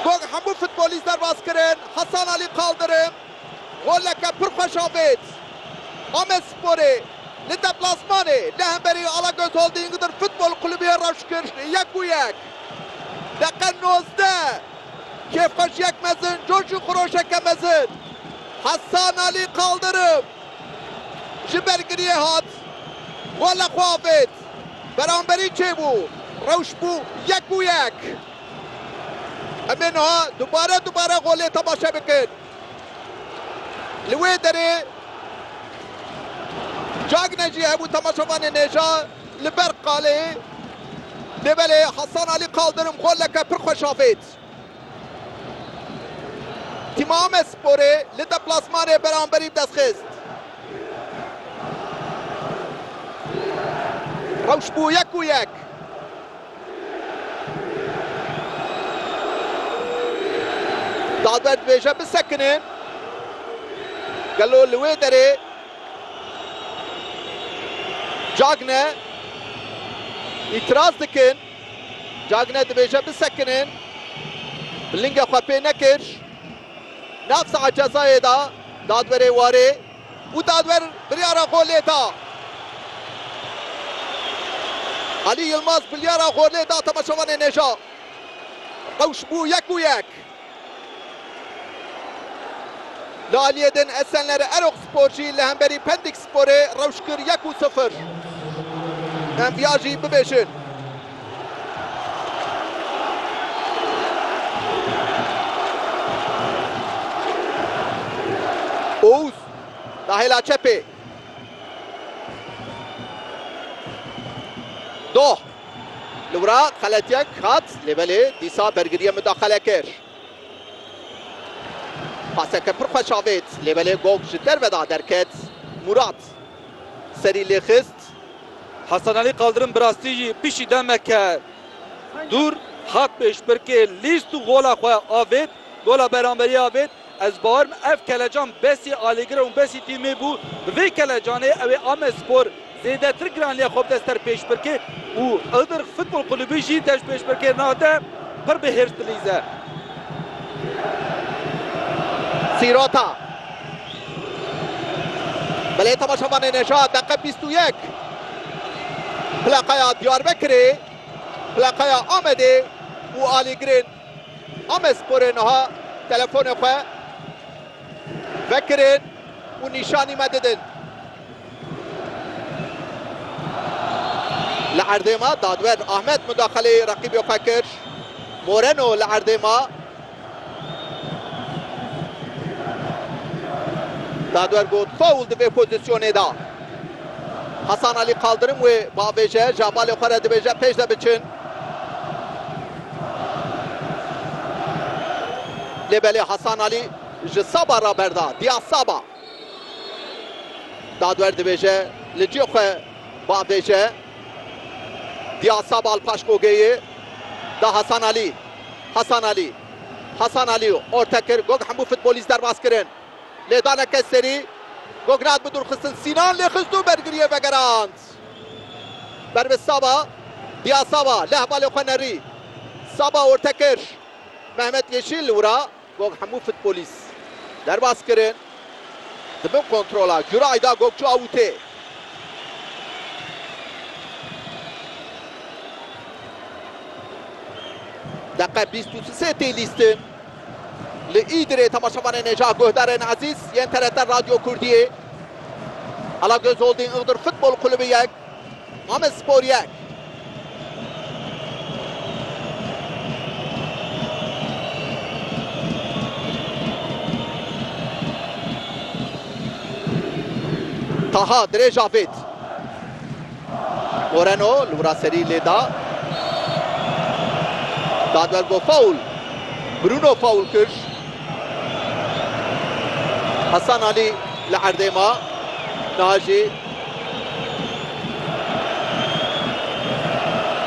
Gog hemû futbolîst derbas kirin, Hasan Alî Kaldirim goleke pir xweş avêt Amedsporê li deplasmanê li hemberî Alagöz Holding dir Futbol Kulübü'ye rewş kir yek û yek. Deqe nozdeh kêfxweşiyek mezin, coş û xiroşeke mezin Hasan Alî Kaldirim ji ber giriyê hat gola xwe avêt. Beramberî çêbû, rewş bû yek bû yek. Em ê niha dubare dubare golê temaşe bikin. Li wê derê Cagne jî hebû temaşevanê nêja li ber qalê dê belê Hasan Alî Kaldirim goleke pir xweş avêt. Timamesporê li deplasmanê beramberî bi dest xist. Rewş bû yek û yek. Dadwer dibêje bisekinin. Gelo li wê derê Cagne îtiraz dikin. Cagne dibêje bisekinin. Bi lingê xwe pê nekir. Nav saha cezayê da dadwerê warê û dadwer biryara xwe lê da. Alî Yilmaz biryara xwe lê da temaşevanê nêja. Rewş bû yek û yek. Li aliyê din Esenler Erok Spor jî li hemberî Pendik Sporê rewş kir yek û sifir. Em viya jî bibêjin. Ouz da hêla çepê. Doh. Li wira xeletyek hat lê belê dîsa bergiriyê midaxele kir. Paseke pir xweş avêt lê belê gog ji derve de derket. Murat serî lê xist. Hesanelî Kaldirim bi rastî jî piştî demeke dûr hat pêşbirkê lîst û gola xwe avêt. Gola beramberiyê avêt. Ez bawerim ev kelecan besî alîgir û besî tîmê bû. Bi vê kelecanê ew ê Amedspor zêdetir giraniya xwe bi dest ter pêş bike û Iğdır Futbol Kulübü jî deş pêşbirkirina te pir bi hêrs dilîze. Sîrota Belê temaşevanê Nejat deqe bîst û yek Plaqaya Diyarbekirê, plaqaya Amedê û alîgirên Amesporê niha telefonê xwe vekirin û nîşanî me didin. Li erdê me dadwer Ahmed mudaxaleyê reqîbê xwe kir. Moreno li erdê me dadwer got faul di vê pozîsyonê de. Hasan Alî Kaldirim wê biavêje, ji avalê xwe re dibêje pêş de biçin. Lê belê Hasan Alî ji Saba re berda. Diyaz Saba. Dadwer dibêje li cihê xwe biavêje. Diyaz Saba li paş Gogeyê da Hasan Alî. Hasan Alî. Hasan Alî orte kir. Gog hemû futbolîst derbas kirin. Lê dane kes serî. Gog nat bi dûrxistin. Sînan lê xist û bergiriyê vegerand. Ber bi Saba, Dia Saba leh balê xwe nerî. Saba orte kir. Mehmet Yeşil li wira got hemû futbolîst derbas kirin. Di bin kontrola Guray de got çû awûtê. Deqe bîst û sê tê lîstin. Li Îdirê temaşevanên Hêja Guhdarên Ezîz yên TRT Radyo Kurdiyê, Alagöz Holding Iğdır Futbol Kulübü yek, Amedspor yek. Taha dirêj avêt. Moreno li wir a serî lê da. Dadwer got faul. Bruno faul kir. Hasan Alî li erdê ma. Niha jî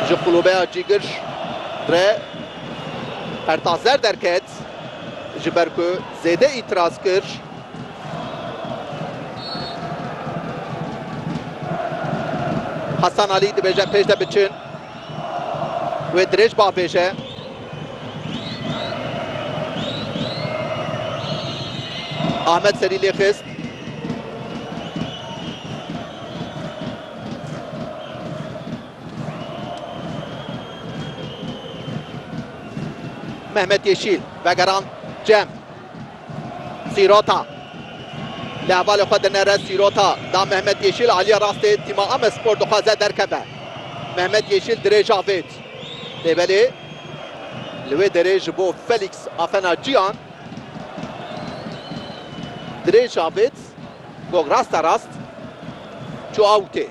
ji qulûbeya Cîgir re Ertazer derket ji ber ku zêde îtiraz kir. Hasan Alî dibêje pêş de biçin. Wê dirêj bah bêje. Ahmet serî lê xist. Mehmet Yeşil vegeran Cem. Sîrota li hevalê xwe dinere. Sîrota da Mehmet Yeşîl. Aliya rastê tîma Amedspor dixwaze derkeve. Mehmet Yeşîl dirêj avêt. Lê belê li wê derê ji bo Felîks Afena Ciyan dirêj avêt. Gog rasta rast çû awtê.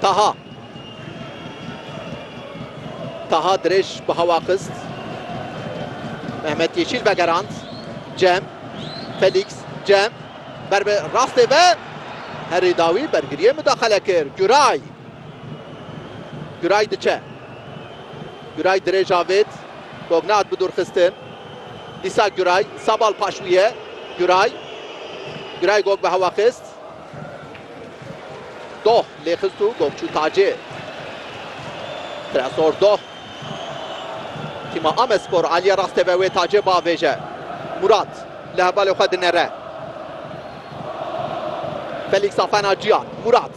Taha. Taha dirêj bi hewa xist. Mehmet Yeşîl vegerand. Cem. Felîks. Cem. Ber bi rastê ve. Herî dawî bergiriyê mudaxele kir. Guray. Guray diçe. Guray dirêj avêt. Gognat bi dûrxistin. Dîsa Guray. Sabal paş wî ye. Guray. Guray gog bi hewa xist. Doh lê xist û gov çû tacê. Tresor Doh tîma Amedspor aliyê rastê ve wê tacê biavêje. Murat li hevalê xwe dinere. Felîks a fena ciyan. Murat.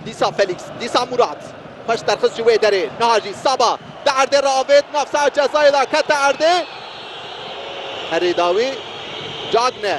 Dîsa Felîks. Dîsa Murat. Xweş derxist ji wê derê. Niha jî Saba di erdê re avêt nav saha cezayê de kete erdê. Herêdawî Cagne.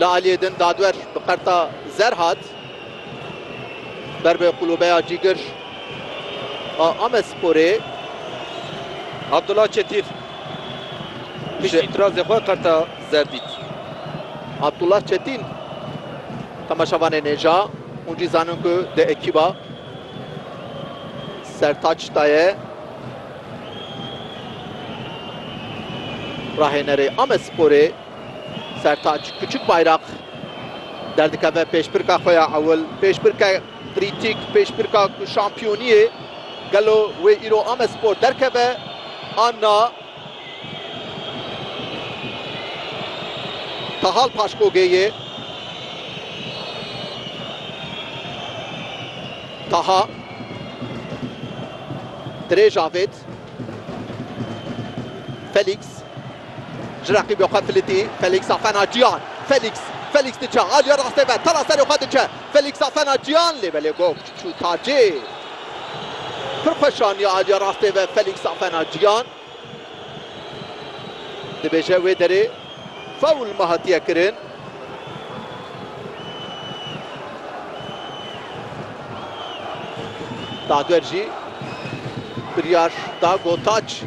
Li aliyê din dadwer bi qerta zer hat ber bi qulûbeya cîgir a Amedsporê. Abdullah Çetîr piştî îtirazê xwe qerta zer dît. Abdullah Çetîn temaşevanê nêja. Hûn jî zanin ku di ekîba Sertaç da ye. Rahênerê Amedsporê Sertaç Kuçukbayrak derdikeve pêşbirka xwe ya ewil, pêşbirka krîtîk, pêşbirka ku şampiyoniyê gelo wê îro Amedspor derkeve an na. Tahal Paşkogê ye. Taha. Dirêj avêt. Felîks. Ji reqîbê xwe filitî. Felîks a fena ciyan. Felîks. Felîks diçe. Aliye rastê ve. Tala serê xwe diçe. Felîks a fena ciyan lê belê gog. Şûta cê pir xweş aniye aliyê rastê ve Felîks Afena Ciyan dibêje wê derê fewl me hatiye kirin. Dadwer jî biryar da Gotaç.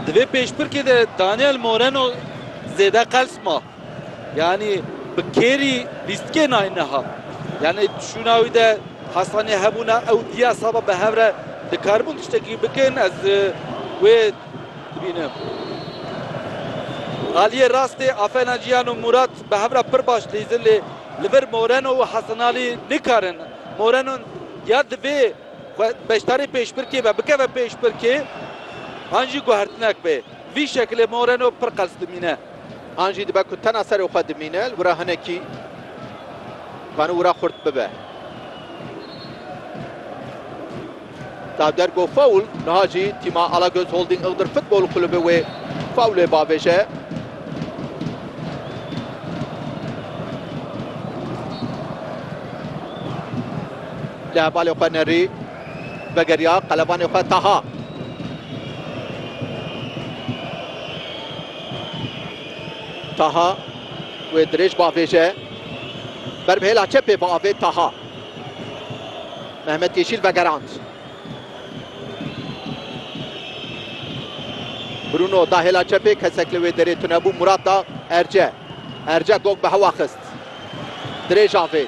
Di vê pêşbirkê de Daniel Moreno zêde qels ma. Yanî bi kêrî lîstikê nayê niha. Yanî şûna wî de Hesanê hebûna ew diya saba bi hev re dikaribûn tiştekî bikin ez wê dibînim. Aliyê rastê Afena Cihan û Mûrat bi hev re pir baş lîzin lê li vir Moreno û Hesanalî nikarin. Moreno ya divê xwe beşdarê pêşbirkê be bikeve pêşbirkê an jî guhertinek be. Vî şekilê Moreno pir qels dimîne. An jî dibe ku tena serê xwe dimîne, li wir a hinekî divanî wira xurt bibe. Da der got faul, niha jî tîma Alagöz Holding Iğdır Futbol Kulübü wê faulê bavêje. Li hevalê xwe nerî vegeriya qelebanê xwe Taha. Taha wê dirêj bavêje. Ber bi hêla çepê biavêt Taha. Mehmet Yeşîl vegerand. Bruno da hêla çepê kesek li wê derê tunebû Murat da Erce. Erce gog bi hewa xist. Dirêj avêt.